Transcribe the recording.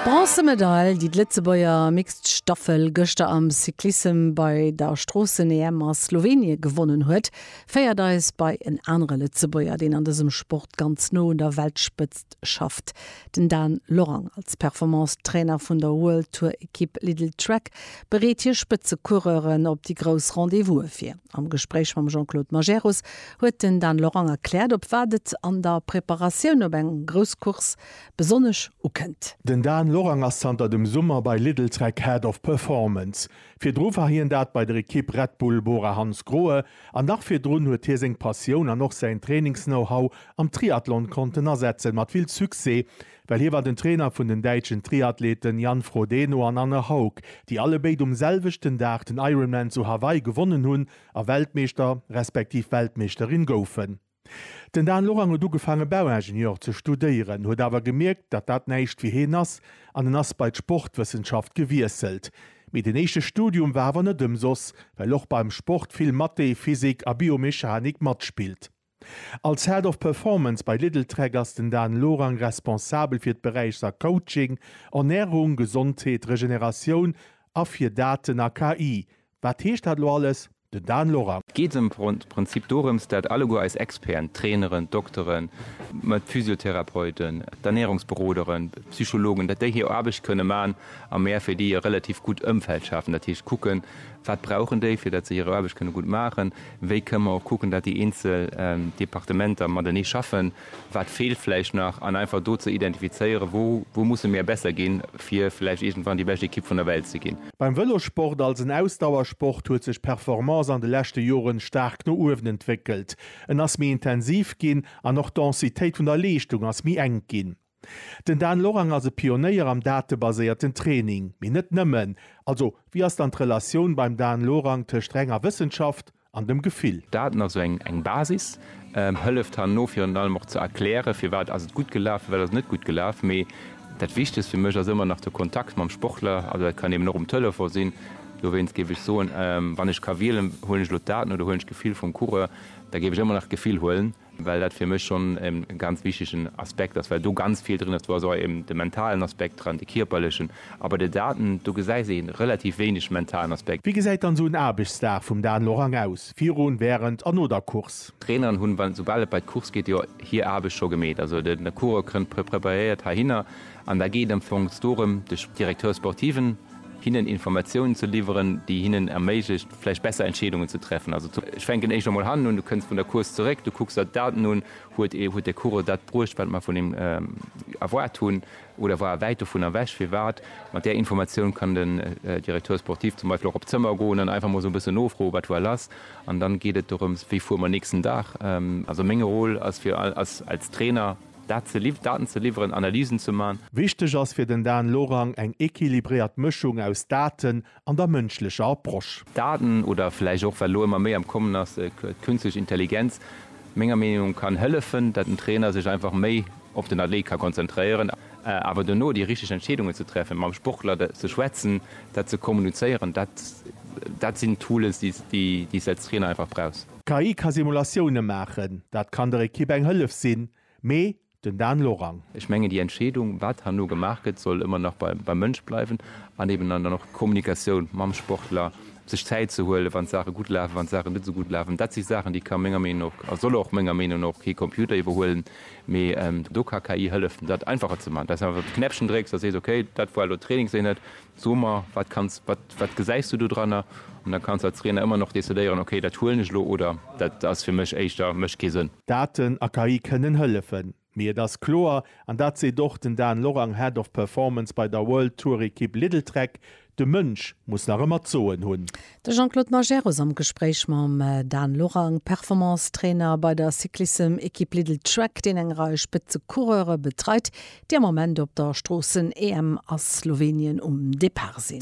D'Bronzemedail, déi d'Lëtzebuerger Mixed Staffel gëschter am Cyclissem bei der Stroossen-EM a Slowenien gewonnen huet, féiert eis bei en anere Lëtzebuerger, deen an dësem Sport ganz no un der Weltspëtzt schafft. Den Dan Lorang, als Performance-Trainer vun der World-Tour-Ekipp Lidl Trek, bereet hir Spëtze-Coureuren op déi grouss Rendez-Vouse vir. Am Gespréich mam Jean-Claude Majerus huet den Dan Lorang erkläert, op wat et an der Preparatioun op eng grouss Course besonnesch ukënnt. Den Dan Lorang ass zanter dem Summer bei Lidl-Trek Head of Performance. Virdru war hien dat bei der Ekipp Red Bull Bora Hansgrohe an nach virdrun huet hie seng Passioun an och säin Trainings-Know-How am Triathlon konnten asetzen, mat vill Succès, Well hie war den Trainer vun den däitschen Triathleten Jan Frodeno an Anne Haug, déi allebéid um selwechten Dag den Ironman zu Hawaii gewonnen hunn a Weltmeeschter respektiv Weltmeeschterin goufen. Den Dan Lorang huet ugefaange Bauingenieur ze studéieren, huet awer gemierkt, datt dat näischt fir heen ass an en ass bei d'Sportwëssenschaft gewiesselt. Mee den éischte Studium war awer net ëmsoss, well och beim Sport vill Mathé, Physik a Biomechanik matspillt. Als Head of Performance bei Lidltrek ass den Dan Lorang responsabel fir d'Beräichser Coaching, Ernärung, Gesondheet, Regeneratioun a fir Daten a KI. Wat heescht dat elo alles? Den Dan Lorang. Geet ëm Prinzip dorëms, dat alleguer eis Experten, d'Traineren, d'Dokteren, d'Physiotherapeuten, d'Ernärungsberoderen, d'Psychologen, dat déi hir Aarbecht kënne man a mär fir déi e relativ gutt Ëmfeld schafen. Dat heescht kucken, wat brauchen déi, fir dat se hir Aarbecht kënne gutt maachen. Wéi kënne mer och kucken, datt déi eenzel Departementer matenee schaffen, wat feelt vläicht nach, an einfach do ze identifizéieren, wou musse mir besser ginn, fir vläicht iergendwann déi bescht Ekipp vun der Welt ze ginn. Beim Vëlossport als en Ausdauersport huet sech d'Performance an de leschte Joren staark no uewen entwéckelt. En ass méi intensiv ginn an och d'Densitéit vun der Leeschtung ass méi enk ginn. Den Dan Lorang ass e Pionéier am datebaséierten Training, mee net nëmmen. Also wéi ass dann d'Relatioun beim Dan Lorang tëscht renger Wëssenschaft an dem Gefill? Daten, also eng Basis, hëlleft herno virun allem och ze erklären, firwat ass et gutt gelaf, firwat ass et net gutt gelaf. Mee dat Wichtegst fir mech ass ëmmer nach de Kontakt mam Sportler. Also dat kann eben och um Telefon sinn. Dowéinst géif ech soen, wann ech ka wielen, huelen ech elo d'Daten oder huelen ech d'Gefill vum Coureur, da géif ech ëmmer nach d'Gefill huelen. well dat fir mech schonn e ganz wichtegen Aspekt ass, well do ganz vill drin ass. Do ass och eben de mentalen Aspekt dran, de kierperlechen, a bei de Daten, do gesäis een relativ wéineg mentalen Aspekt. Wéi gesäit dann esou en Aarbechtsdag vum Dan Lorang aus, virun, wärend a no der Course? D'Traineren hunn, wann, soubal et bei d'Course geet, jo hir Aarbecht scho gemeet. Also de Coureur kënnt preparéiert heihinner an da geet am Fong dorëm, de Directeur sportiven, hinnen Informatiounen ze liwweren, déi hinnen erméiglecht vläicht besser Entscheedungen ze treffen, also zum, ech fänken éischter mol hannen un, du kënns vun der Course zeréck, du kucks der d'Daten un, huet e, huet de Coureur dat bruecht, wat mer vun him erwaart hunn, oder war e wäit dovun ewech, firwat? Mat där Informatioun kann den Directeur sportif zum Beispill och op d'Zëmmer goen an einfach mol esou e bëssen nofroen, wat war lass, an dann geet et dorëms, wéi fuere mer nächsten Dag? Also meng Rôle ass fir, als, als Trainer. Dat ze liww, Daten ze liwweren, Analysen ze man. Wichteg ass fir den Dan Lorang eng equilibréiert Mëschung aus Daten an der mënschlecher Approche. Daten, oder vläicht och, wat elo ëmmer méi am Kommen ass, d'künstlech Intelligenz, menger Meenung, kann hëllefen, dat den Trainer sech einfach méi op den Athlet ka konzentréieren. Awer dono déi richteg Entscheedungen ze treffen, mam Sportler ze schwätzen, dat ze kommunizéieren, dat, dat sinn Tools, déi s de als Trainer einfach brauchs. D'KI ka Simulatioune maachen, dat kann der Ekipp eng Hëllef sinn, mee den Dan Lorang. Ech mengen, déi Entscheedung, wat herno gemaach gëtt, soll ëmmer nach beim Mënsch bleiwen an eben dann och d'Kommunikatioun mam Sportler, sech Zäit ze huelen, wann d'Saache gutt lafen, wann d'Saache net esou gutt lafen. Dat si Saachen, déi ka menger Meenung no och a soll och menger Meenung no och kee Computer iwwerhuelen, mee do ka KI hëllefen, dat einfacher ze maachen, dass einfach de Knäppchen drécks a sees, okay, dat war elo Trainingseenheit, So mer, wat kanns, wat, wat gesäis du do dranner? An da kanns de als Trainer ëmmer nach decidéieren, okay, dat huelen ech elo oder dat ass fir mech éischter, mécht kee Sënn. Daten a KI kënnen hëllefen, mee et ass kloer, an dat seet och den Dan Lorang, Head of Performance bei der World Tour Ekipp Lidl-Trek, De Mënsch muss nach ëmmer d'Soen hunn. De Jean-Claude Majerus am Gespréich mam Dan Lorang, Performance-Trainer bei der Cyclissem-Ekipp Lidl-Trek, deen eng Rei Spëtze-Coureure betreit, déi am Ament op der Stroossen-EM a Slowenien um Depart sinn.